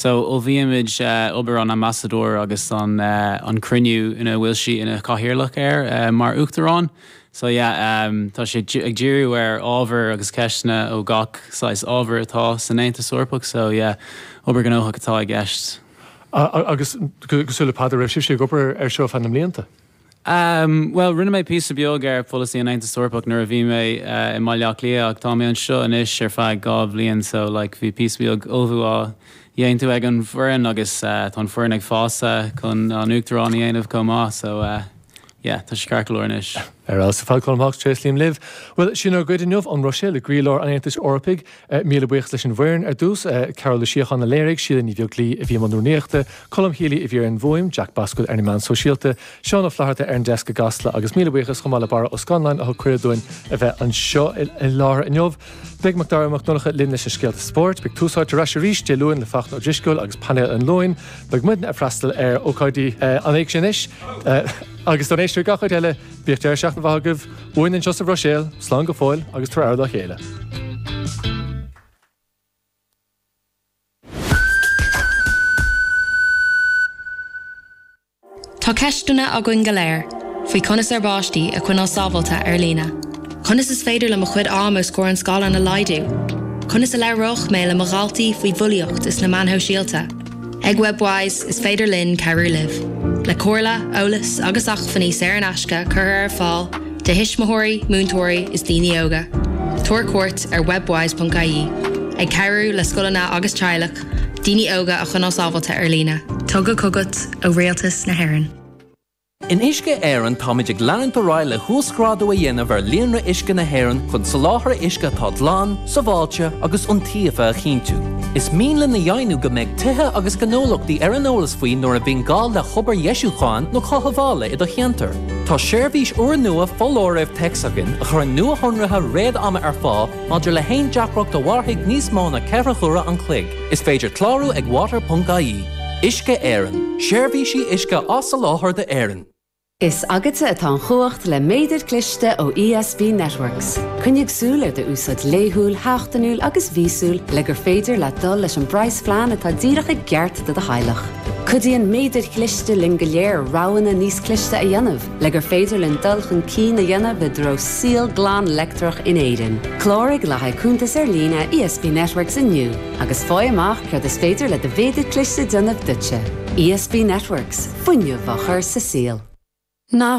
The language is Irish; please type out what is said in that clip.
So ullmhaímid obair an Ambasadóir agus an cruinniú ina bhfuil sí ina cathaoirleach air mar Uachtarán. So yeah tá sé ag díriú ar ábhar agus ceisteanna ó gach saghas ábhar atá san Aontas Eorpach. So yeah obair ghnóthach atá i gceist. Agus cosúil le Peadar, an raibh sibhse ag obair air seo feadh na mblianta? Bhuel, rinne mé píosa beag ar pholasaí an Aontas Eorpach nuair a bhí mé i mBaile Átha Cliath ach tá mé anseo anois ar feadh dhá bhliain so like bhí píosa beag ullmhú á dhéantú ag an bhfoireann agus tá an foireann ag fás chun an Uachtarán a dhéanamh chomh maith so yeah tá sé ceart go leor anois. Ar fheabhas, a Pheadair, Colm Hawkes, tréaslaím libh. Bhuel, sin ár gcuid inniu ón Bhruiséil i gcroílár an Aontais Eorpaigh. Míle buíochas leis an bhfoireann ar dtús, Cathal Ó Síocháin a léirigh, Síle Ní Bheaglaoi a bhí i mbun rúnaíochta, Colm Healy a bhí ar an bhfhuaim, Jack Boswell ar na meáin shóisialta, Seán Ó Flaithearta ar an deasc i gCasla agus míle buíochas chomh maith le Barra Ó Scanláin a thug cuireadh dúinn a bheith anseo i láthair inniu. Beidh Macdara Mac Donncha linn leis na scéalta spóirt, beidh Tús Áite ar ais arís Dé Luain le Fachtna Ó Drisceoil agus Painéal an Luain, beidh muidne ag freastal ar ócáidí an Éigse anois agus don éisteoir gach áit eile, Bíodh deireadh seachtaine mhaith agaibh uainn anseo sa Bhruiséil, slán go fóill agus tar aire dá chéile. Tá ceisteanna againn go léir faoi conas ár bpáistí a choinneáil sábháilte ar líne. Conas is féidir le mo chuid ama os comhair an scáileáin a laghdú? Conas a labhróidh mé le mo dhaltaí faoi bhulaíocht is na meáin shóisialta? Ag Webwise, is féidir linn cabhrú libh le comhairle, eolas agus acmhainní saor in aisce curtha ar fáil do thuismitheoirí, múinteoirí is daoine óga. Tabhair cuairt ar webwise.ie, ag cabhrú le scoileanna agus teaghlach daoine óga a choinneáil sábháilte ar líne. Tugtha chugat ó Rialtas na hÉireann. In Uisce Éireann táimid ag leanúint ar aghaidh le huasghrádú a dhéanamh ar líonra uisce na hÉireann chun soláthar uisce atá glan, sábháilte agus iontaofa a chinntiú. Is mian linn a dheimhniú go mbeidh tithe agus gnólachtaí ar an eolas faoi nuair a bhíonn gá le hobair dheisiúcháin nó chothabhála i do cheantar. Tá seirbhís úrnua foláirimh téacs againn a chuireann nuashonruithe réad-ama ar fáil maidir le haon deacracht a mhairfidh níos mó ná ceithre huaire an chloig. Is féidir clárú ag water.ie. Uisce Éireann, seirbhísí uisce á soláthar d'Éirinn. Is agatsa atá an chumhacht le méadar cliste ó ESB Networks. Coinnigh súil ar do úsáid laethúil, sheachtainiúil agus mhíosúil le gur féidir leat dul leis an bpraghasphlean atá díreach i gceart do do theaghlach. Cuidíonn méadair chliste linn go léir roghanna níos cliste a dhéanamh. Le gur féidir linn dul chun cinn a dhéanamh i dtreo saol glan leictreach in Éirinn, cláraigh le haghaidh cuntas ar líne ESB Networks inniu agus faigh amach céard is féidir le do mhéadar cliste déanamh duitse. ESB Networks, fuinneamh á chur sa saol. Na